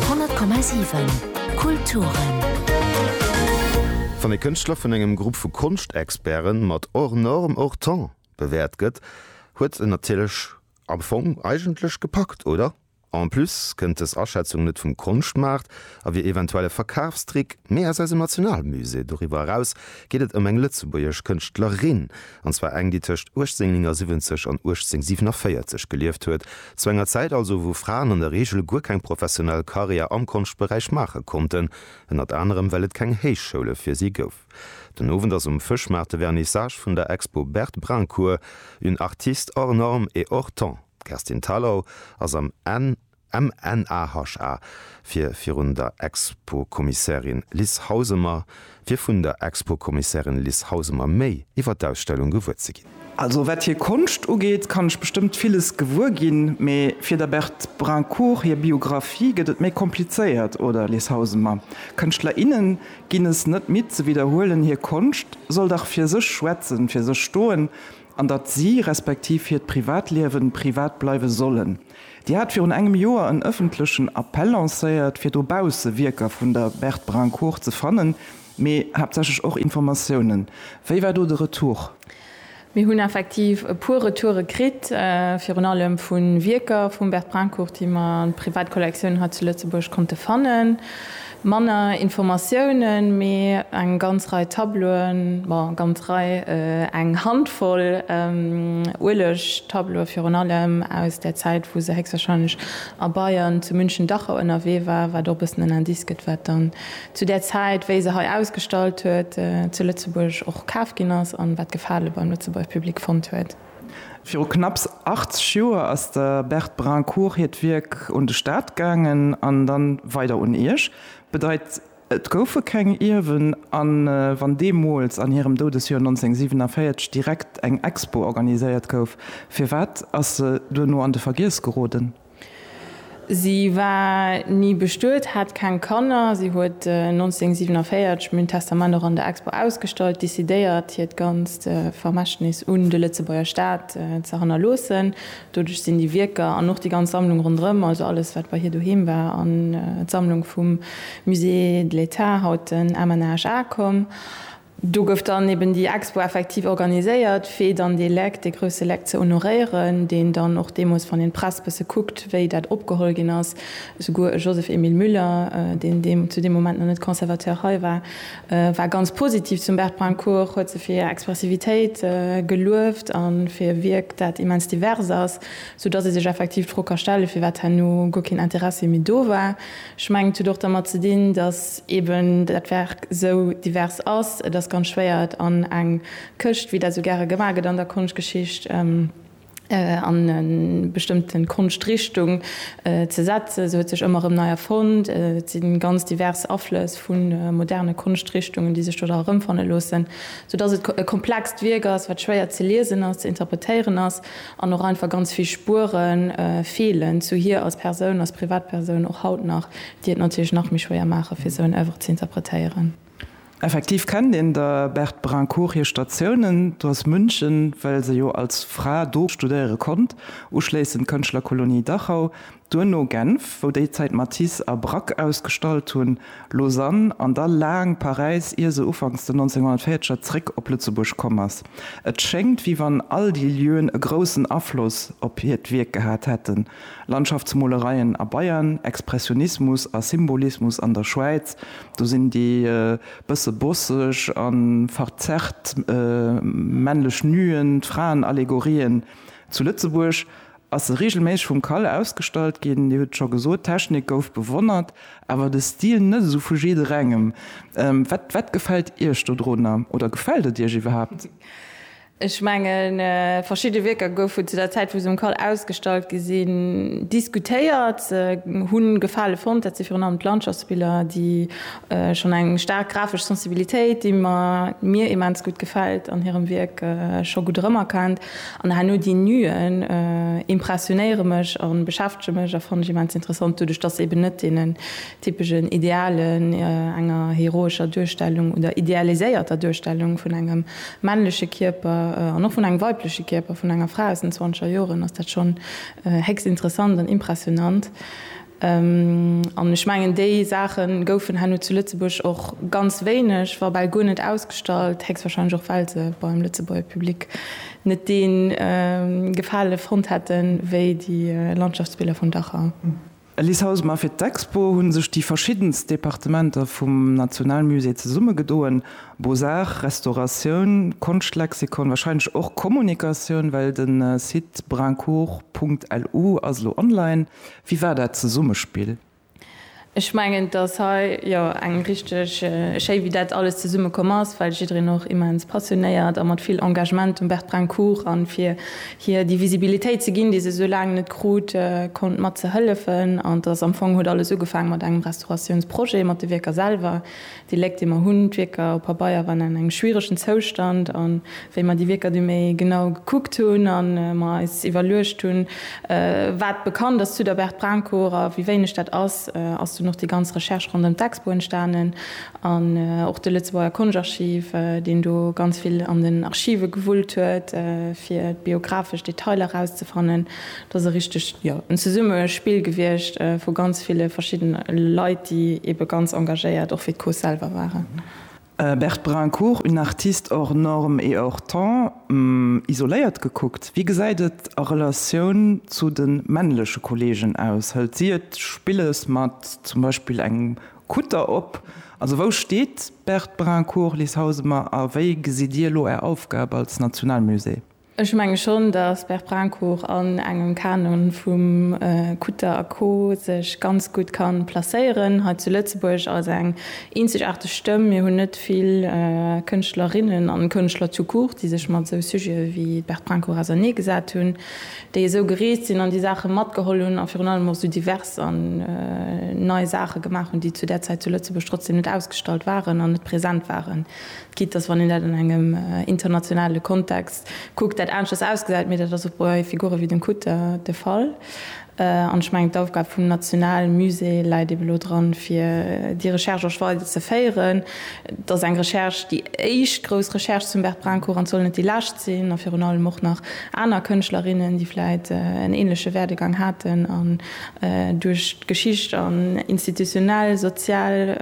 100,7 Kulturen. Wann e Kënschtler vun engem Grupp vu Konschtexperte mat hors norme, hors temps bewäert gëtt, huet en natierlech am Fong eigentlech gepackt, oder? En plus kënnt dës Aschätzung net vum Konschtmaart a wier eventuell e Verkafstrick, mee aus eisem Nationalmusée. Doriwwer eraus geet et ëm eng lëtzebuergesch Kënschtlerin, an zwar eng, déi tëscht 1879 an 1847 gelieft huet, zu enger Zäit also, wou Fraen an der Reegel guer keng professionell Karriär am Konschtberäich maache konnten, ënnert anerem well et keng Héichschoule fir si gouf. Den Owend ass um Fëschmaart de Vernissage vun der Expo Berthe Brincourt, Une artiste hors norme et hors temps. D'Kerstin Thalau ass am N. MNAHA, fir virun der Expo-Kommissärin Liz Hausemer, fir vun der Expo-Kommissärin Liz Hausemer méi iwwer d'Ausstellung gewuer ze ginn. Also wat hir Konscht ugeet, kann ech bestëmmt villes gewuer ginn, mee fir der Berthe Brincourt hir Biographie gëtt et méi komplizéiert, oder Liz Hausemer? Kënschtler, innen ginn es net midd ze widderhuelen, hir Konscht soll dach fir sech schwätzen, fir sech stoen, an datt si, respektiv hiert Privatliewen, privat bleiwe sollen. Dir hat virun engem Joer en ëffentlechen Appell lancéiert, fir dobausse Wierker vun der Berthe Brincourt ze fannen, mee haaptsächlech och Informatiounen. Wéi war do de Retour? Mir hunn effektiv e puer Retoure kritt, virun allem vu Wierker vum Berthe Brincourt, déi mer an Privatkollektioun hei zu Lëtzebuerg konnte fannen. Manner Informatiounen, mee eng ganz Rei Tableauen, bon, ganz Rei, eng Handvoll Uelegtableaue virun allem aus der Zäit, wou se héchstwahrscheinlech a Bayern zu München-Dachau ënnerwee war, wat och e bëssen en Indice gëtt, wat dann zu där Zäit, wéi se hei ausgestallt huet, zu Lëtzebuerg och kaf ginn ass an wat Gefale beim Lëtzebuerger Public fonnt huet. Viru knapps 80 Joer ass der Berthe Brincourt hiert Wierk un de Staat gaangen an dann weider un Iech. Bedeit et goufe keng Ierwen an wann deemools an hirem Doudesjoer 1947 direkt eng Expo organiséiert gouf, firwat ass se duerno an de Vergiess geroden? Si war ni bestuet, hat keng Kanner. Si huet 1947 mün Testament och an der Expo ausgestallt, decidéiert hiert ganzt Vermächtnis un de Lëtzebuerger Staat ze hannerloossen. Doduerch sinn déi Wierker an och déi ganz Sammlung ronderëm, also alles wat bei hir doheem war, an d'Sammlung vum Musée de l'État, haut den MNHA, komm. Do gouf dann eben déi Expo effektiv organiséiert, fir dann dee Leck, dee grousse Leck ze honoréieren, deen dann och deemools, wann een d'Press bësse kuckt, wéi dat opgeholl ginn ass, souguer e Joseph-Emile Müller, deen deem, zu deem Moment nach net Conservateur hei war, war ganz positiv zum Bert Brincourt, huet se fir hir Expressivitéit gelueft a fir e Wierk, dat immens divers ass, soudatt ee sech effektiv d'Fro ka stellen, firwat herno guer keen Interessi méi do war. Ech mengen, et huet och dermat ze dinn, datt eeben dat Werk esou divers ass. Et ass ganz schwéier, et an eng Këscht, wéi dat esou gäre gemaach gëtt an der Konschtgeschicht, an e bestëmmte Konschtrichtung ze setzen. Se huet sech ëmmer erëm nei erfonnt. Et si ganz divers Aflëss vu moderne Konschtrichtungen, déi sech do da erëmfanne loossen, soudatt et e komplext Wierk ass, wat schwéier ze liesen ass, ze interpretéieren ass. An och einfach ganz vill Spuere feelen zu hir als Persoun, als Privatpersoun och haut nach, déi et natierlech nach méi schwéier maachen, fir esou en Oeuvre ze interpretéieren. Effektiv kennt een der Berthe Brincourt hir Statiounen, do ass München, well se jo als Fra do studéiere konnt, uschléissend d'Kënschtlerkolonie Dachau, Duerno Genf, wou déi Zäit Matisse a Braque ausgestallt hunn, Lausanne an da laang Paräis, ier se ufanks den 1940er zréck op Lëtzebuerg komm ass. Et schéngt, wéi wann all déi Lieuen e groussen Afloss op hiert Wierk gehat hätten, Landschaftsmolereien a Bayern, Expressionismus a Symbolismus an der Schwäiz, do sinn déi bësse bosseg a verzerrt männlech Nuen, d'Fraenallegorien zu Lëtzebuerg ass se reegelméisseg vum Kalle ausgestallt ginn. Dir hutt et scho gesot, d'Technik gouf bewonnert, awer de Stil net esou vu jidderengem. Wat, wat gefält Iech dodrunner oder gefält et Iech iwwerhaapt? Ech mengen, verschidde Wierker goufen zu der Zäit, wou se um Kall ausgestallt gi sinn, diskutéiert, hu Gefale fonnt. Dat si virun allem d'Landschaftsbiller, déi schonn eng staark grafesch Sensibilitéit, déi mir immens gutt gefält an hirem Wierk, scho gutt erëmerkennt. An herno déi Nuen impressionéiere mech a beschäftege mech a fannen ech immens interessant, doduerch datt se eben net deenen typeschen Idealen, enger heroescher Duerstellung oder idealiséierter Duerstellung vun engem männleche Kierper an och vun engem weibleche Kierper vun enger Fra aus den zwanzeger Joren, ass dat schonn héchst interessant an impressionant. An ech mengen, déi Saache goufen herno zu Lëtzebuerg och ganz wéineg, wa bal guer net ausgestallt, héchstwahrscheinlech och well se beim Lëtzebuerger Public net dee Gefale fonnt hätten, wéi déi Landschaftsbiller vun Dachau. Alice Hausma, Fir d'Expo hu sech déi verschiddenst Departementer vum Nationalmusée zesummegedoen, Beaux-Arts, Restauratioun, Konschtlexikon, wahrscheinlech och Kommunikatioun, well de Site brincourt.lu ass elo online. Wéi war dat Zesummespill? Ech mengen, dass hei jo eng richteg schéi, wéi dat alles zesumme komm ass, well jiddereen och immens passionéiert a mat vill Engagement dem Bertbrencourt a fir hir déi Visibilitéit ze ginn, déi se esou laang net krut, konnt mat ze hëllefen. An dass am Fong huet alles ugefaange mat engem Restauratiounsprojet, mat de Wierker selwer, Déi Léck, déi mer hunn, d'Wierker op Pabeier waren an engem schwieregen Zoustand. A wéi mer déi Wierker du méi genau gekuckt hunn a mer eis iwwerluecht hunn, wat bekannt ass zu der Berthe Brahnkower a wéi wéineg dat ass, ass dunn och déi ganz Recherche ronderëm d'Expo entstanen an och de Lëtzebuerger Konschtarchiv, deen do ganz vill an den Archive gewullt huet, fir biographesch Detailer erauszefannen. Dat ass e richteg, jo, en Zesummespill gewiescht vu ganz ville verschidden Leit, déi ebe ganz engagéiert och fir d'Course selwer waren. Berthe Brincourt, Une artiste hors norme et hors temps, isoléiert gekuckt, wéi gesäit et a Relatioun zu de männleche Kolleegen aus? Hëlt si et spillesch mat zum Beispill engem Kutter op? Also wou steet d'Berthe Brincourt, Liz Hausemer, a wéi gesitt Dir elo Är Aufgab als Nationalmusée? Ech menge schonn, datt Berprincourt an engem Kanon vum Kutter a Co sech ganz gutt ka placéieren hei zu Lëtzebuerg als eng eenzegaarteg Stëmm. Mir hunn net vill Kënschtlerinnen an Kënschtler tout court, déi sech mat esou Sujete wéi d'Berprincourt ausernee gesat hunn, déi esou gereest sinn an déi Saache matgeholl hunn a virun allem och esou divers an nei Saache gemaach hunn, déi zu där Zäit zu Lëtzebuerg trotzdeem net ausgestallt waren an net present waren. Quitte dass, wann een dat an engem internationale Kontext kuckt, dat aneschters ausgesäit, mee dat ass och bei Figure wéi dem Kutter de Fall. An ech mengen, d'Aufgab vum nationale Musée läit eeben elo dran, fir déi Recherche och weider ze féieren. Et ass eng Recherche, déi éischt grouss Recherche zum Bert Brincourt, an et soll net déi lescht sinn. A virun allem och nach aner Kënschtlerinnen, déi vläicht en änleche Werdegang haten, duerch d'Geschicht an institutionell, sozial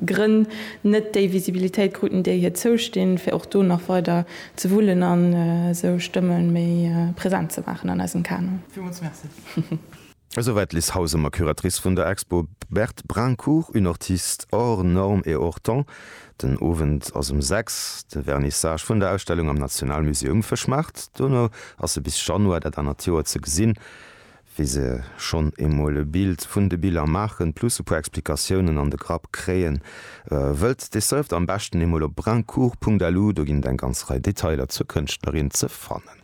Grënn net déi Visibilitéit kruten, déi hir zoustinn, fir och do nach weider ze wullen an esou Stëmme méi present ze maachen an eisem Kanon. Villmools Merci. Esouwäit d'Liz Hausemer, Curatrice vun der Expo Berthe Brincourt, Une ortiste hors norme et hors temps. Den Owend ass um 6 de Vernissage vun der Ausstellung am Nationalmusée um Fëschmaart. Dono ass se bis Januar dat anert Joer ze gesinn, wéi se schonn emol e Bild vun de Biller maachen, plus e puer Explikatiounen an de Grapp kréien. Wëllt Dir surft am beschten emol op brincourt.lu, do ginn et eng ganz Rei Detailer zur Kënschtlerin ze fannen.